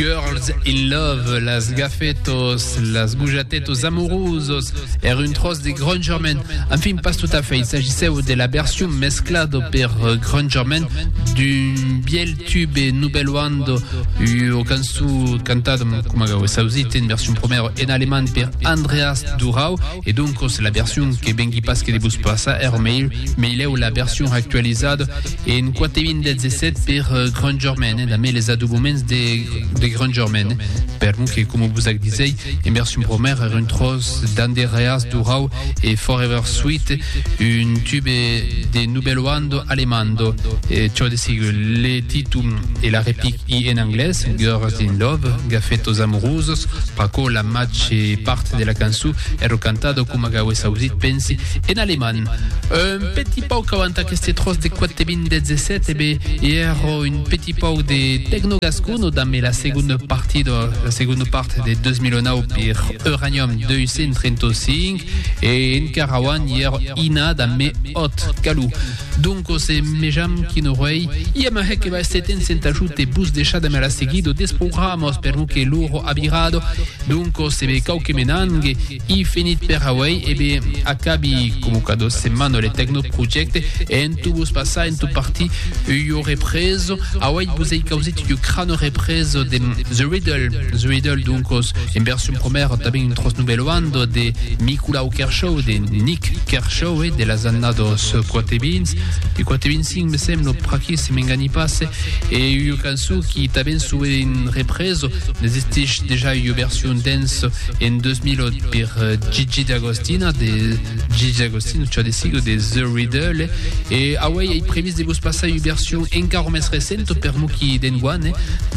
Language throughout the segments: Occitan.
Girls in love, las gafetos, las gojatetos amorosos, er un tros de gronjament, enfin pas tot a fait, il s'agisseu de la version mesclado per gronjament d'un biel tube Nubelwando, ua cançó cantada, coma gau es ausit, en version promèra en alemand per Andreas Durau, e doncos la version que vengui pas que de vos passar, er meilheu la version actualizada, En quate vint dètz e sèt per Grandgermaine, e damb eles adoboments de Grandgermaine, per non que, coma vos ac disei, en version promèra ère un tròç d'Anderreas Durau e Forever Sweet, un tube de Nubelloando Alemando, çò de sigur. Le titum e la replic i en anglés, Girls in Love, Gafetos Amorusos, pr'aquò la màger part de la cançon ère cantada, coma qu'auèsse ausit, pensi, en alemand. Petit pauc avant aqueste tròç de 42017 e be i èrò un petit pauc de tecnogascon o damb la segonda partit o la segonda part de 2009 per Euranium 235 e encara avant i èrò ina damb me òt calò. Donc o se mejam qui no rei. Ia ma hè que va èster temps en t'ajut e bus decha damb la seguida des programas per lo que loro a virado. Donc o se be cau que me nangue. I finit per auei, e be, acabi comu cada setmana o le Tecnoprojecte, e en tu vos passar, en tu partir, ua represa, auei vos ei causit ua crana represa de The Riddle, The Riddle doncas en version promèra, tanben un tròç novelhanda de Nicolau Kershaw, de Nick Kershaw, e de las annadas 4 e 20, de 4 e 25 me sembla, pr'aquí, si m'engani pas, e ua cançon qui tanben sue en represa, n'existís dejà ua version dance en 2008 per Gigi D'Agostina de Gigi D'Agostina, çò de sigur de The Riddle, e auei ei previst de vos passar ua version encara mès recenta per mo qui d'enguan,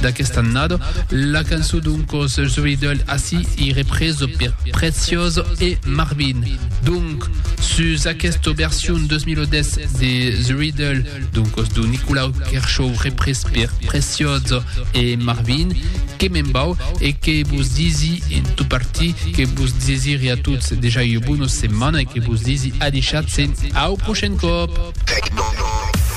d'aquesta annada. La cançon doncas The Riddle ací ei represa per Preciosa e Marvin. Doncas, Sus aquesta version 2010 de The Riddle, donc de Nicolau Kershaw repres per Precioso e Marvin, que me'n vau e que vos disi en tot parti que vos desiri a tots dejà ua bona setmana e que vos disi adishatz e au prochain còp!